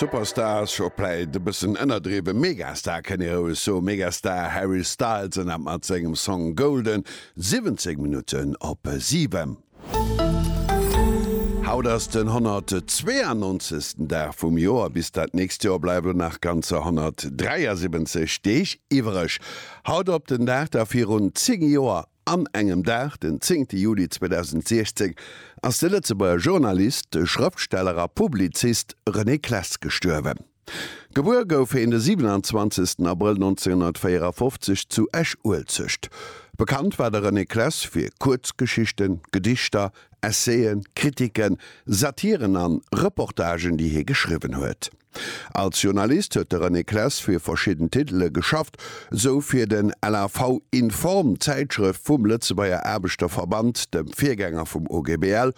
Superstar ass scho vläit e bëssen ënnerdriwwen, Megastar kënn ee roueg soen. Megastar Harry Styles ënnert mat sengem Song Golden 17 Minutten op 7. Haut ass den 192. Dag vum Joer. Bis dat nächst Joer bleiwe lo nach ganzer 173 Deeg iwwereg. Haut op den Dag da virun 10 Joer An engem Dag, den 10 Juli 2016, ass de Lëtzebuerger Journalist, Schrëftsteller a Publizist René Claes gestuerwen. Gebuer gouf heen de 27 Abrëll 1954 zu Esch-Uelzecht. Bekannt war de René Claes fir Kuerzgeschichten, Gedichter, Essayen, Kritiken, Satiren an Reportagen, déi hie geschriwwen huet. Als Journalist huet de René Clesse fir verschidden Titele geschafft, sou fir den LAV Inform, Zäitschrëft vum Lëtzebuerger Aarbechterverband, dem Virgänger vum OGBL,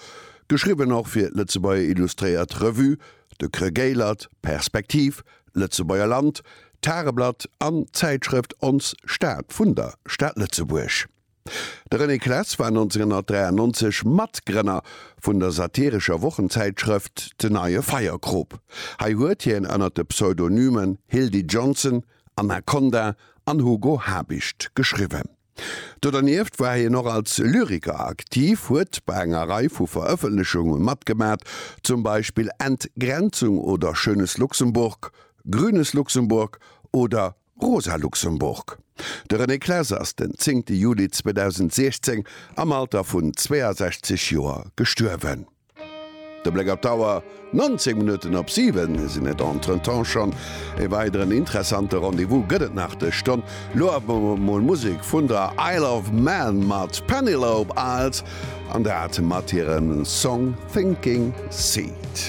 geschriwwen och fir d'Lëtzebuerger Illustréiert Revue, de Creux Gaillert, Perspektiv, Lëtzebuerger Land, d'Tageblatt an d'Zäitschrëft Ons Stad vun der Stad Lëtzebuerg. De René Claes war 1993 Matgrënner vun der satirescher Wochenzäitschrëft De Neue Feierkrop. Hei huet hien ënner de Pseudonymen Hildy Johnson, Anaconda an Hugo Habicht geschriwwen. Do dernieft war hien och als Lyriker aktiv, huet bei enger Rei vu Verëffentlechunge matgemat, zum Beispill Entgrenzung oder Schönes Luxemburg, Grünes Luxemburg oder Rosa Luxemburg De René Claeser ass den zéngte Juli 2016 am Alter vun 62 Joer gestuerwen. De Bléck op d'Auer, 19 Minutten op 7 sinn et. Entretemps schonn e weideren interessante Rendez-vous gëtt et nach dës Stonn. Lo awer mol Musek vun der Isle of Man mat Penelope Isles an dat mat hirem Song Sinking Seed.